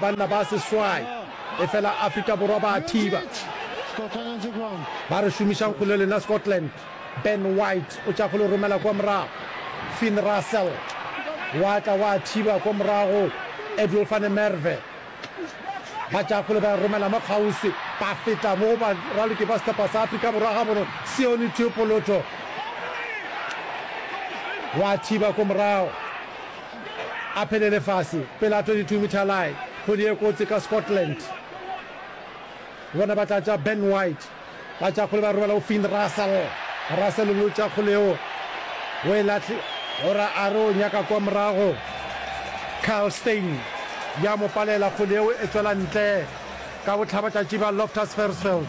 Banna ba seswai efela Afrika Borwa ba a thiba. Ba re šomišang go le lena Scotland. Ben White o tša go le romela kwa morago. Finn Russell wa tla wa thiba kwa morago. Edwill van der Merwe ba tša go le ba romela mo kgauswi. Ba feta mo ba raloki ba sehlopha sa Afrika Borwa ga bono Sione Tiopoloto wa thiba kwa morago. a phele lefase pele a 22 metre line kgwedi ye kotsi ka Scotland bona ba tla tša Ben White ba tša kgole ba robala go Finn Russell Russell o tša kgole yeo o e lahle ora a re o nyaka kwa morago Kyle Steyn ya mo palela kgole yeo e tswela ntle ka bohlabatšatši ba Loftus Versfeld.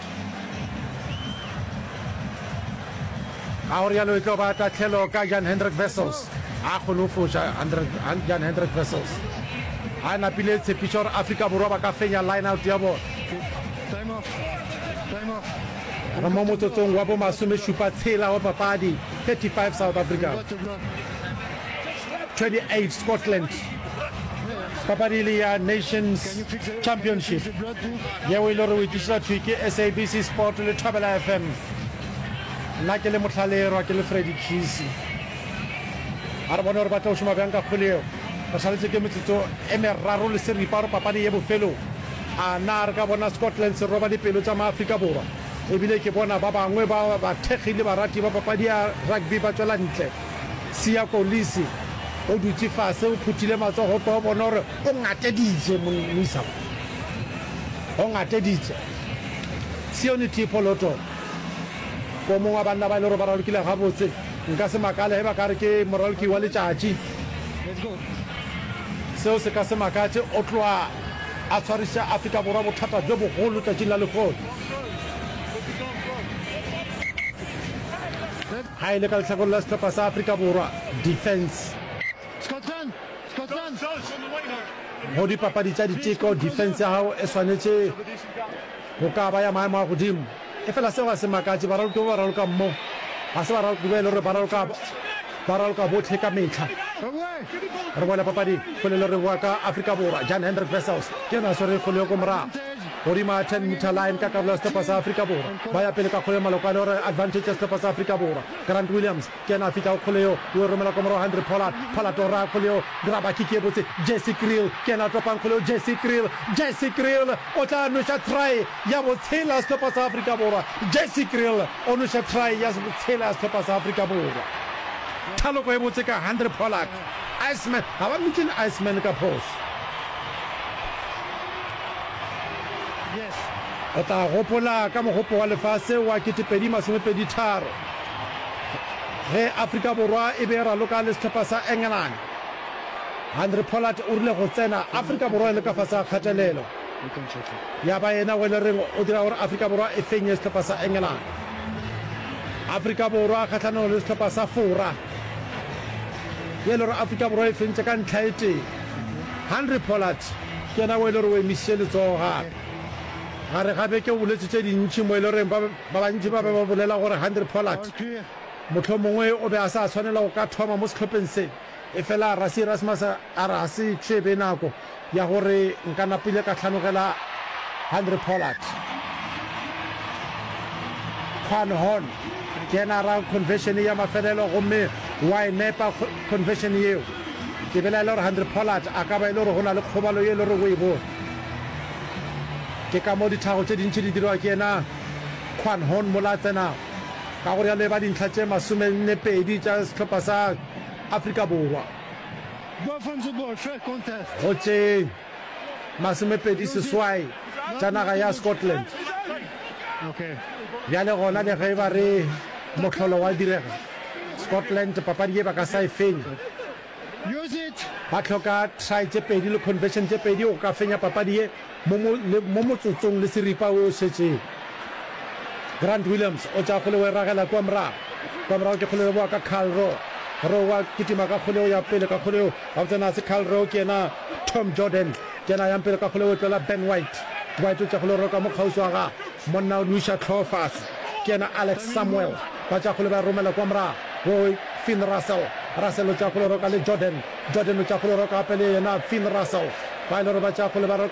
Ga go rialo e tlo ba tahlelo ka Jan Hendrik Wessels. A kgone go foša Jan Hendrik Wessels. A napile tshepišo gore Afrika Borwa ba ka fenya line-out ya bona. Re mo motsotsong wa bo masomešupa tshela wa papadi, 35 South Africa. 28 Scotland papadi e le ya Nations Championship yeo e le gore o itlišetša thwi ke SABC Sport le Thobela FM nna ke le motlhalerwa ke le Freddy Kisi a re bone gore ba tla o šoma bjang ka kgole eo re šaletse ke metsotso e meraro le seripa gore papadi ye bofelo a na re ka bona Scotland se roba dipelo tsa maaforika borwa ebile ke bona ba bangwe ba bathekgi le barati ba papadi ya rugby ba tswela ntle Siya Kolisi, o dutše fase, o phuthile matsogo kwa o bona gore o ngateditše, moisa mo. O ngateditše. Sione Tipho Loto, ko mongwe wa banna ba e le gore ba ralokile gabotse, nka se makale ge ba ka re ke moraloki wa letšatši. Seo se ka se makatše, o tloga a tshwariša Afrika Borwa bothata bjo bogolo letšatšing la lehono. Ga e le ka lehlakoreng la sehlopha sa Afrika Borwa, defence. Go dipapadi tša diteko, defence ya gago e swanetše go ka ba ya maemo a godimo. Efela seo ga se makatše, baraloki ba ba ralokang mo ga se baraloki ba e le gore ba raloka ba raloka bohle ka mehla. Re boela papading, Kgole Loreboa ka Afrika Borwa, Jan Hendrik Wessels ke yena a swere Kgole yo ko morago. Godima 10 metre line ka karolo ya sehlopha sa Afrika Borwa. Ba ya pele ka kgole malokwane gore advantage ya sehlopha sa Afrika Borwa. Grant Williams ke yena a fihtago kgole yeo, o e romela kwa morago Henry Pollard. Pollard o raya kgole yeo, graba kick ye botse. Jesse Kriel ke yena a topang kgole yeo, Jesse Kriel, Jesse Kriel o tla nweša try ya botshela ya sehlopha sa Afrika Borwa. Jesse Kriel o nweša try ya botshela ya sehlopha sa Afrika Borwa. Thaloko e botse ka Henry Pollard. Iceman, ga ba mmitšene Iceman ka phošo. Re tla gopola ka Mogopo wa Lefase wa 2023 ge Afrika Borwa e be e raloka le sehlopha sa England. Henry Pollard o rile go tsena Afrika Borwa e le ka fase ga kgatelelo, ya ba yena o e le reng o dira gore Afrika Borwa e fenye sehlopha sa England. Afrika Borwa kgahlanong le sehlopha sa Fora, ye e le gore Afrika Borwa e fentše ka ntlha e tee. Henry Pollard. Ke yena o e le gore o emišitše letsogo gape. Gare ga beke o boletše tše dintši mo e le goreng ba bantši ba be ba bolela gore Handré Pollard mohlomongwe o be a sa swanela go ka thoma mo sehlopheng se. Efela Rassie Erasmus a re ga se tše be nako ya gore nka napile ka hlanogela Handré Pollard. Quan Hon ke yena a ra conversion ya mafelelo gomme wa e nepa conversion yeo. ke belaela gore Handre Pollard a ka ba e le gore go na le kgobalo ye e le gore o e bone. Ke ka mo dithago tše dintši di dirwa ke yena Quan Hon mola a tsenago. Ka go rialo e ba dintlha tše masomenne pedi tša sehlopha sa Afrika Borwa. Go tšeng? masomepedi seswai tša naga ya Scotland. Bjale gona le ge ba re mohlolo wa direga, Scotland papadi ye ba ka sa e fenya. Ba hloka try tše pedi le conversion tše pedi go ka fenya papadi ye mo motsotsong le seripa wo o šetšego. Grant Williams o tša kgole o e ragela kua morago. Kua morago ke kgole e boa ka Carl Rowe. Rowe wa kitima ka kgole o ya pele ka kgole o. Gabotse na se Carl Rowe ke yena Tom Jordan, Kena yang pele ka go leotlo la Ben White. Ba tšwetša go le roka mo kgauswi wa ga monna o nwiša tlhogo fase. Kena Alex Samuel, ba tšea go le ba e romela kwa morago go Finn Russell. Russell o tšea go le roka le Jordan. Jordan o tšea go le roka gape le yena Finn Russell. Ba ile gore ba tšea go le ba roka.